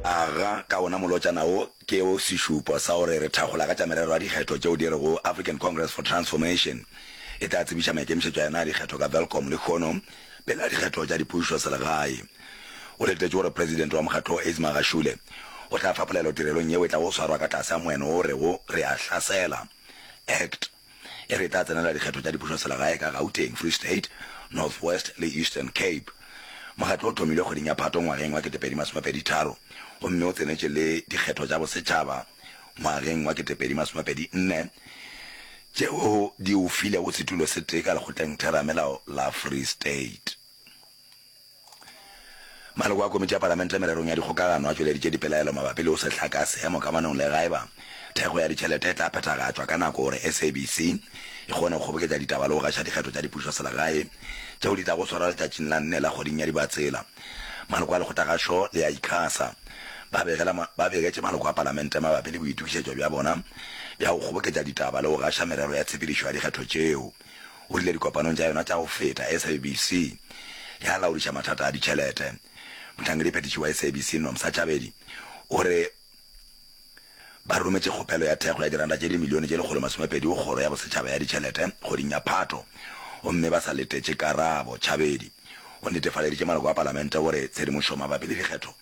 Aga ka wona molotšana wo ke o sešupo sa gore re thakgola ka tša merero ya dikgetho tšeo di rego African Congress for Transformation e tla tsebiša maikemišetšo a yona a dikgetho ka Welkom lehono pele ga dikgetho tša dipušo selegae. Go letetšwe gore presidente wa mokgatlo wo Ismagashule o tla fa polelo tirelong yeo e tlago swarwa ka tlase ga moeno wo o rego Re a Hlasela, Act. e re e tla tsenela dikgetho tša dipušoselegae ka Gauteng, Free State, North West le Eastern Cape. Mokgatlo o thomilwe kgweding ya Phato ngwageng wa 2023 gomme o tsenetše le dikgetho tša bosetšhaba ngwageng wa 2024 tšeo di o filego setulo se tee ka lekgotleng theramelao la Free State. Maloko a Komiti ya Palamente Mererong ya Dikgokagano a tšweleditše dipelaelo mabapi le go se hlaka seemo kamanong le gaeba thekgo ya ditšhelete e tla phethagatšwa ka nako gore SABC e kgone go kgoboketša ditaba le go gaša dikgetho tša dipušoselegae tšeo di tlago swarwa letšatšing la nne la kgweding ya Dibatsela. Maloko a lekgotlagašo le a Icasa ba begela ba begetše maloko a Palamente mabapi le boitokišetšo bja bona bja go kgoboketša ditaba le go gaša merero ya tshepedišo ya dikgetho tšeo. O rile dikopanong tša yona tša go feta, SABC ya laodiša mathata a ditšhelete. Mohlangediphethiši wa SABC Nomsa Tšabedi o re ba rometše kgopelo ya thekgo ya diranta tše dimilione tše lekgolo masomepedi go kgoro ya bosetšhaba ya ditšhelete kgweding ya Phato gomme ba sa letetše karabo. Tšabedi o netefaleditše maloko a palamente gore tshedimošo mabapi le dikgetho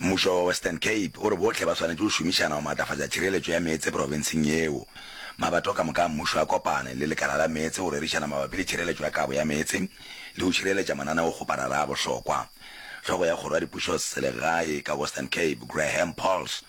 Mmušo wa Western Cape o re bohle ba swanetše go šomišana go maatlafatša tšhireletšo ya meetse profenseng yeo. Mabato ka moka a mmušo a kopane le lekala la meetse go rerišana mabapi le tšhireletšo ya kabo ya meetse le go šireletša mananeokgoparara a bohlokwa. Hlogo ya kgoro ya dipušoselegae ka Western Cape, Graham Pauls,